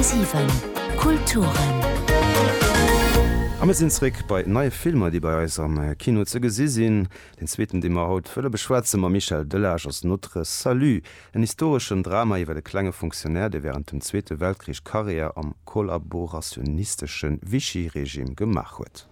10,7 Kulturen. A mir sinn zréck bei neie Filmer, déi bei eis am Kino ze gesi sinn. Den zweeten, dee mer haut wëlle beschwätze mam Michel Delage, ass Notre Salut, en historeschen Drama iwwer e klenge Fonctionnaire, dee wärend dem Zweete Weltkrich Karriär am kollaborationistesche Vichy-Regime gemaach huet.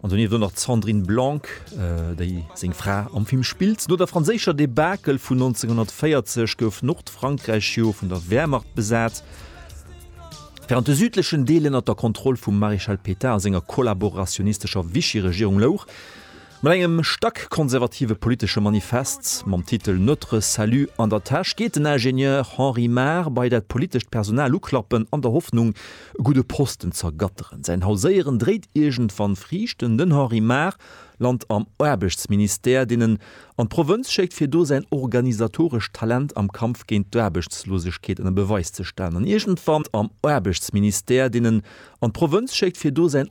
An donieft elo nach d'Sandrine Blanc, déi seng Fra am Film spillt. No der franséischer Debakel vun 1940 gouf Nordfrankräich jo vun der Wehrmacht besat. Wärend de südlechen Deel ënnert der Kontroll vum Maréchal Pétain a senger kollaborationistescher Vichy-Regierung louch, mat engem stack konservative politesche Manifest mam Titel Notre salut an der Täsch geet den Ingenieur Henri Mar bei dat politescht Personal uklappen an der Hoffnung, e gudde Posten z'ergatteren. Säin Hauséieren dréit iergendwann Friichten, Den Henri Maar lant am Aarbechtsministère, deen en an d'Provënz schéckt, fir do säin organisatorescht Talent am Kampf géint d'Aarbechtslosegkeet ënner Beweis ze stellen. An iergendwann am Aarbechtsministère, deen en an d'Provënz schéckt, fir do säin.